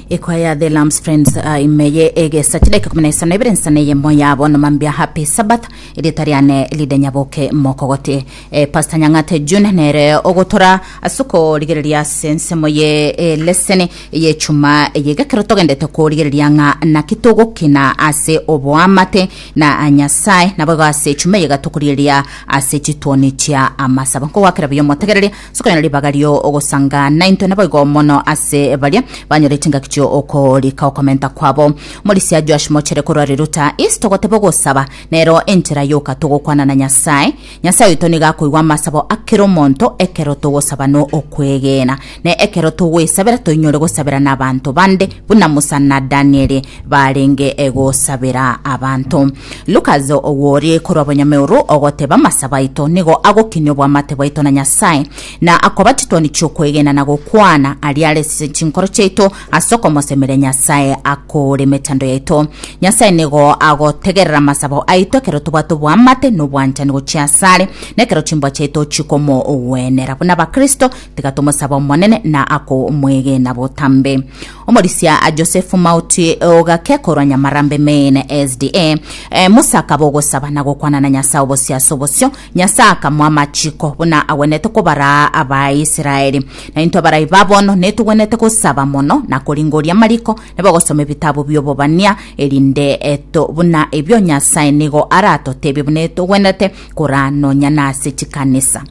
Ekwaya The Lambs Friends ah, imeye egesa chidaika kumi na isano ebere nsana eyemo yabo nomambia Happy Sabbath erieta riane ride nyaboke mokogote eh, Pastor Nyang'ate June nere ogotora ase okorigereria ase ensemo ye eh, leseni eye chuma eye gekero togendete korigereria ng'a naki togokina ase oboamate na ah, Nyasaye naboigo ase chuma eye gatokorigereria ase chituoni chia amasabo nkogwakera buya omotegereria Sikonyora ribaga rio ogosanga naintwe naboigo mono ase baria banyorete engaki chio okorika okomenta kwabo. Omorisia Joash Mochere korwa Riruta East togoteba ogosaba nero enchera yoka togokwana na Nyasae. Nyasae oito nigo akoigwa amasabo akera omonto ekero togosaba no okwegena. Ne ekero togwesabera toinyore gosabera nabanto bande buna Musa na Danieli barenge gosabera abanto. Lukas ogw'ore korwa Bonyameoro ogoteba, Amasabo aito nigo agokini obwamate bwaito na Nyasae, na akoba chitwani chi'okwegena na gokwana aria are ase chinkoro chiaito ase okomosemeria Nyasae akoore emechando yaito. Nyasae nigo agotegerera amasabo aito ekero tobwate obwamate na obwanchani gochia asare, na ekero chimbwa chiaito chikomogwenera. Buna Abakristo, tiga tomosabe Omonene na akomwegena botambe. Omorisia Josefu Mauti ogake korwa nyamarambe Maine SDA eh, Musa akaba ogosaba na gokwana na Nyasae obosio ase obosio. Nyasae akamwa amachiko buna agwenete kobara Abaisraeli. Na intwe abarai babono netogwenete gosaba mono na koringoria amariko na bagosoma ebitabu bi'obobania erinde eh, to buna ebio Nyasae nigo aratotebie buna etogwenete koranonya nase chikanisa.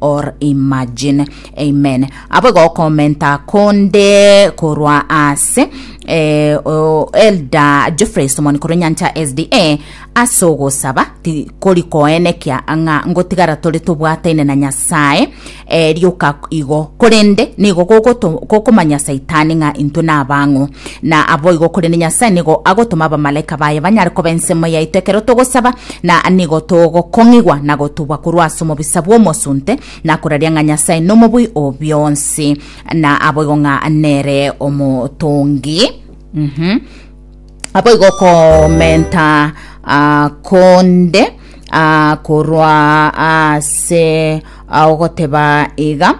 or imagine amen abo gokomenta konde korwa ase eh, o- elda geoffrey somoni korwa nyancha sda ase ogosaba ti- kori koenekia ng'a ngotigara tore tobwataine na nyasae eh, rioka igo korende nigo gogoto- gokomanya saitani ng'a intwe nabang'o na abo igo korende nyasae nigo agotoma abamalaika baye banyare koba ensemo yaito ekero togosaba Na nigo togokong'igwa na gotubwa korwa ase omobisa bw'omosunte, na koraria ng'a Nyasae nomobui o bionsi, na aboigo ng'a nere omotongi. Mhm. Aboigo okomenta ah, konde ah, korwa ase ah, ogoteba iga,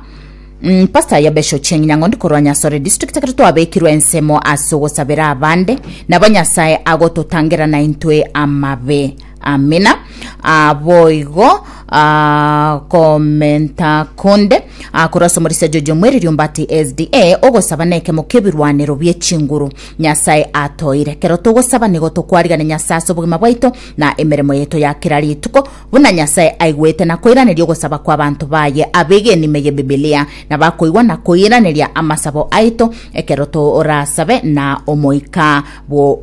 Pastor Yabesho Cheng Nyang'ondi korwa Nyasore District ekero twabekirwe ensemo ase ogosabera abande, nabo Nyasae agototangera naintwe amabe. Amina. Ah, boigo ah, komenta konde ah, korwa ase omorisia Jojo Mweriri Ombati SDA, ogosaba nekemo kebirwanero bie chinguru Nyasae atoire. Kero togosaba nigo tokwarigane Nyasae ase obogima bwaito na emeremo yaito ya kera rituko, Buna Nyasae aigwete na koiraneria ogosaba kw'abanto baye ab'egenime y'Ebibilia, nabo akoigwa na koiraneria amasabo aito ekero torasabe na omoika bw'okwegena.